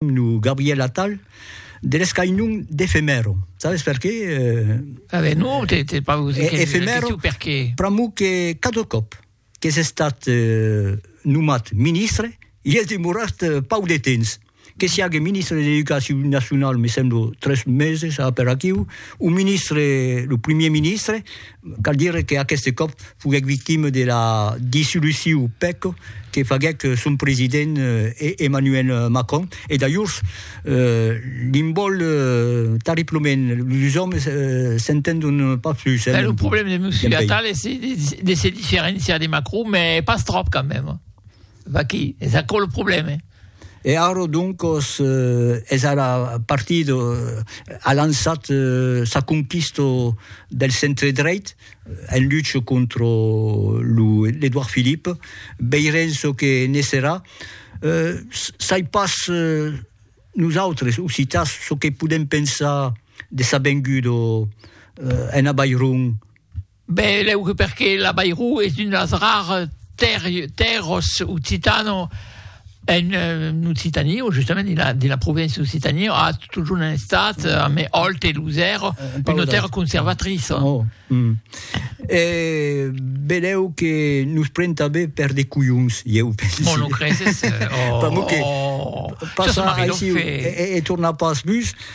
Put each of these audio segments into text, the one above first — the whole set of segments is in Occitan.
Lo Gabriel Attal de l'escainon d'efemèro. Sabes per qué? A ben non, te te pas vous dire efemèro per qué. Pr'amor que cada còp qu'es estat nomat ministre i es demorat pauc de temps. Que siague ministre de l'Educacion Nacional me semblo tres meses a per aquiu, o ministre lo primier ministre Cal dire que aqueste còp foguèc victima de la dissoluciu pèc que faguèc son president Emmanuel Macron e d'ajors l'n vòl tarriplament, los òmes s'entendon pas plus. Ben lo problème de Monsieur Attal es de se diferenciar de Macron, mès pas tròp quand même. Vaquí, es aquò lo problème. E ara, doncas, es ara partit, a lançat sa conquista del centre-dreit, en lucha contra lo Edouard Philippe. Veirem çò que ne serà. Sai pas nosautres, occitans, çò que podem pensar de sa venguda ena Vall Ron. Ben lèu que perqué l'Abairou es un as rars tèrros occitano en Occitanie o justament dins la provincia d'Occitanie a totjorn en estat a me òlt e losèro una tèrra conservatriça e belèu que nos pren tanben per de colhons ieu pensi bon lo creses? Pas mot que passar aicí e tornar pas bus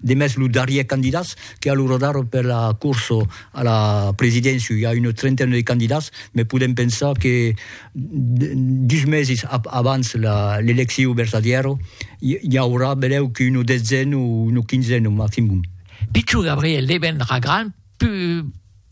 Demest lo darrier candidats que a lo radar per la corsa a la presidéncia, i a una trentaina de candidats, me podem pensar que dus meses abans l'elecciu vertadièra i aurà benlèu que una detzena o una quinzena maximum. Pichon Gabriel devendrà grand